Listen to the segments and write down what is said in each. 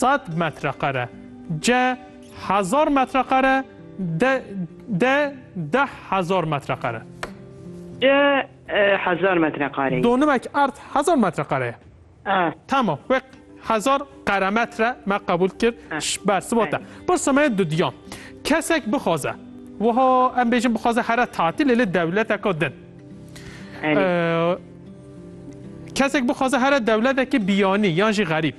Sed metrekare, ce hezar metrekare, de de deh hezar metrekare. De hezar metrekare. Donimek erd hezar metrekare ye. A. Tamam, wê hezar qeremetre me qebûl kir ji ber sibat e. Pirsa me dudiyan. Kesek bixwaze, wiha em bêjin bixwaze here tatilê li dewleteka din. Kesek bixwaze here dewletekî biyanî yan jî xerîb.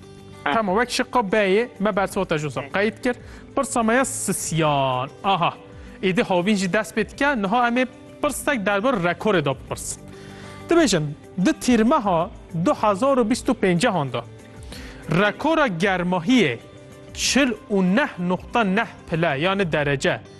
Hemo wek şiqo beyê me bersota jû zor qeyd kir. Pirsa me ya sisyan. Aha. Êdî havîn jî dest pê dike. Niha em ê pirsek derbir rekorê de bipirsin. Dibêjin di tîrmeha 2025an de rekora germahiyê 49.9 pile yanê derece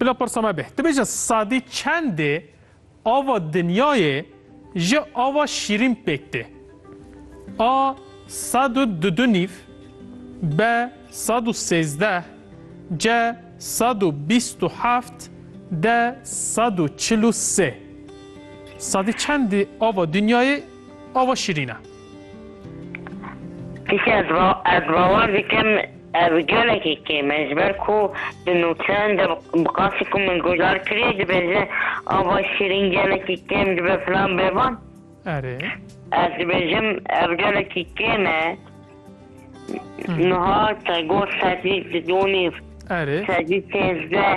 Bila pirsa me bê, tu bêje sadî çendê ava dinyayê ji ava şîrîn pêk tê? A sed û du du nîv, B sed û sêzdeh, C sed û bîst û heft, D sed û çil û sê. Sadî çendê ava dinyayê ava şîrîn e? Pîkê ez va ez bawer dikim ev gelekî kêm e ji ber ku di nûçeyan de bi qasî ku min guhdar kiriye dibêje ava şîrîn gelekî kêm dibe filan bê van. Erê. Ez dibêjim ev gelekî kêm e. Niha te got sedî di dû nîv. Erê. Sedî sêzdeh.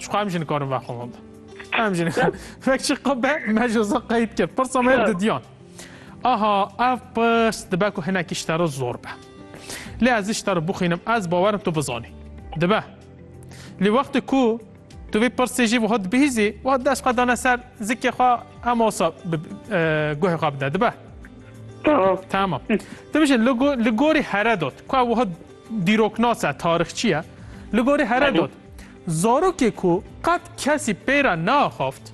Çiqo em jî nikarin vexwin. Em jî nikarin. Vek çiqo be me ji zin qeyd kir. Pirsa me didiyan. Aha ev pirs dibe ku hinekî ji te re zor be. Lê ez ji te re bixwînim ez bawerim tu bizanî. Dibe. Lê wextê ku tu vê pirsê jî wiha dibihîzî wiha dest xwe dane ser zikê xwe em osa guhê xwe bide dibe. Tamam. Dibijin li gorî heredot ku wiha dîroknas e tarixçiye li gorî heredot. Zarokê ku qet kesî pey re neaxaft,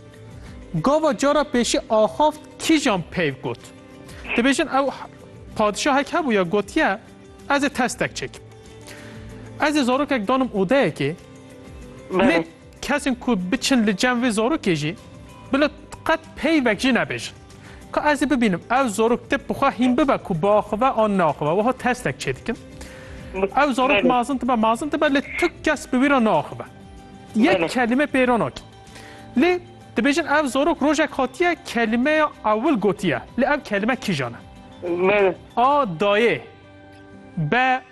gava cara pêşî axaft kîjan peyv got. Dibêjin ew padişahek hebûye gotiye ez ê testek çêkim. Ez ê zarokek danim odeyekê, lê kesên ku biçin li cem vê zarokê jî bila qet peyvek jî nebêjin. Ka ez ê bibînim ew zarok tip bi xwe hîn bibe ku biaxive an neaxive wiha testek çêdikim. Ew zarok mezin dibe mezin dibe lê tu kes bi wî re neaxive. Yek kelîme pê re nake. Lê dibêjin ev zarok rojek hatiye kelîmeya ewil gotiye lê ev kelîme kîjan e? A dayê be